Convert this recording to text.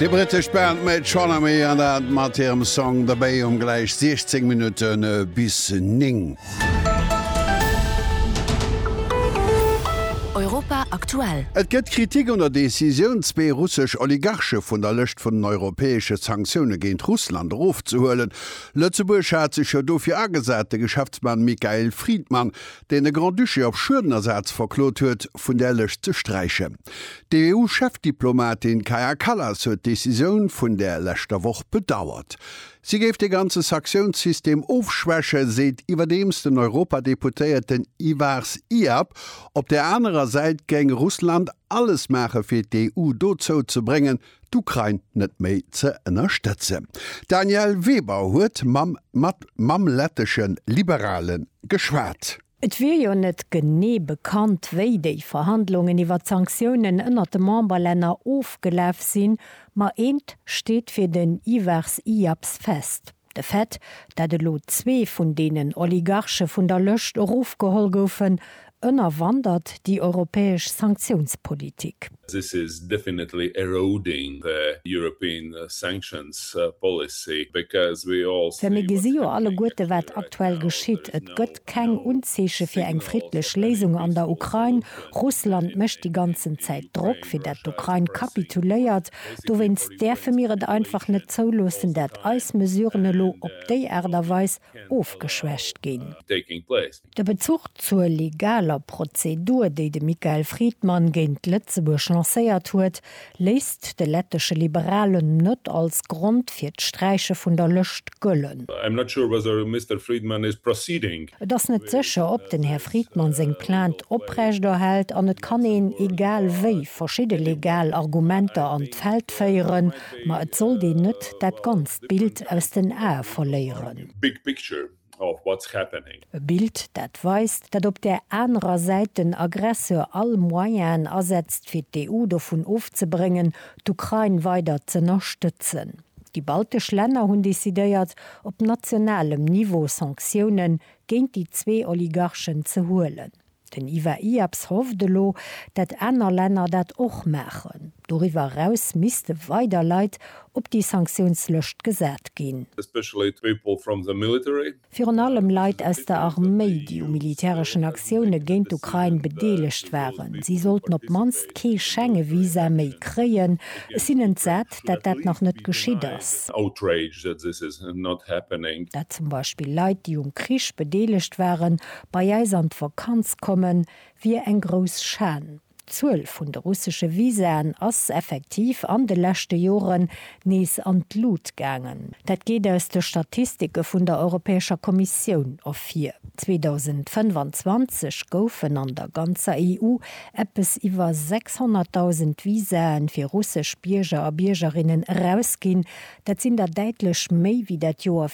Déi brittesch Band Metronomy an dat mat hirem Song The Bay um gläich 16 Minutte bis 9. Europa aktuell. Et gëtt Kritik un der Decisioun, zwee russesch Oligarche vun der Lëscht vun den europäesche Sanktioune géint Russland erofzehuelen. Lëtzebuerg hat sech jo dofir agesat, de Geschäftsmann Michael Friedmann, deen de Grand-Duché op Schuedenersaz verklot huet, vun där Lëscht ze sträichen. D'EU-Chefdiplomatin Kaja Kallas huet d'Decisioun vun där leschter Woch bedauert. Si géif dee ganze Sanktiouns-System ofschwächen, seet iwwerdeems den Europadeputéierten Ivars Iab. Op där anerer Säit géing Russland alles maache fir d'EU dozou ze bréngen, d'Ukrain net méi ze ënnerstëtzen. D'Danièle Weber huet mam mat mam lettesche Liberale geschwat. Et wier jo net genee bekannt, wéi déi Verhandlungen iwwert d'Sanktiounen ënnert de Memberlänner ofgelaf sinn, ma eent steet fir den Ivars Iaps fest, De Fait, dat elo zwee vun deenen Oligarche vun der Lëscht erofgeholl goufen, ënnerwandert déi europäesch Sanktiounspolitik. This is definitely eroding the European sanctions policy because we all see what's happening at the moment. Well mir gesi jo alleguerte wat aktuell geschitt. Et gëtt keng Unzeeche fir eng friddlech Léisung an der Ukrain. Russland mécht déi ganzen Zäit Drock, fir dat d'Ukrain kapituléiert. Dowéinst däerfe mir et einfach net zouloossen, dat eis Mesuren elo op déi Aart a Weis ofgeschwächt ginn. De Bezuch zur legaler Prozedur, déi de Michael Friedman géint Lëtzebuerg lancéiert huet, léisst de lettesche Liberalen net als Grond fir d'Sträiche vun der Lëscht gëllen. I'm not sure whether Mister Friedman is proceeding. Et ass net sécher, ob den Här Friedman seng Plainte oprechterhält, an et kann een, egal wéi, verschidde legal Argumenter an d'Feld féieren, ma et sollt een net dat ganzt Bild aus den Ae verléieren. E Bild, dat weist, datt op där anerer Säit den Aggresseur all Moyenaen asetzt, fir d'EU dovun ofzebréngen, d'Ukrain weider z'ënnerstëtzen. Déi baltesch Länner hunn decidéiert, op nationalem Niveau Sanktioune géint déi zwee Oligarchen ze huelen. Den Ivar Iaps hofft elo, dat aner Länner dat och maachen. Doriwwer eraus misste weider Leit op déi Sanktiounslëscht gesat ginn. Especially people from the military. Virun allem Leit aus der Arméi, déi u militäreschen Aktioune géint d'Ukrain bedeelegt waren. Si sollten op d'mannst kee Schenge-Visa méi kréien. Ech sinn entsat, dat dat nach net geschitt ass. Dat zum Beispill Leit, déi um Krich bedeelegt waren, bei eis an d'Vakanz kommen, wier eng grouss Schan. D'Zuel vun de russesche Visaen ass effektiv an de leschte Joren nees an d'Lut gaangen. Dat geet aus de Statistike vun der Europäescher Kommissioun ervir. 2025 goufen an der ganzer EU eppes iwwer 600.000 Visae fir russesch Bierger a Biergerinnen erausginn. Dat sinn der däitlech méi wéi dat Joer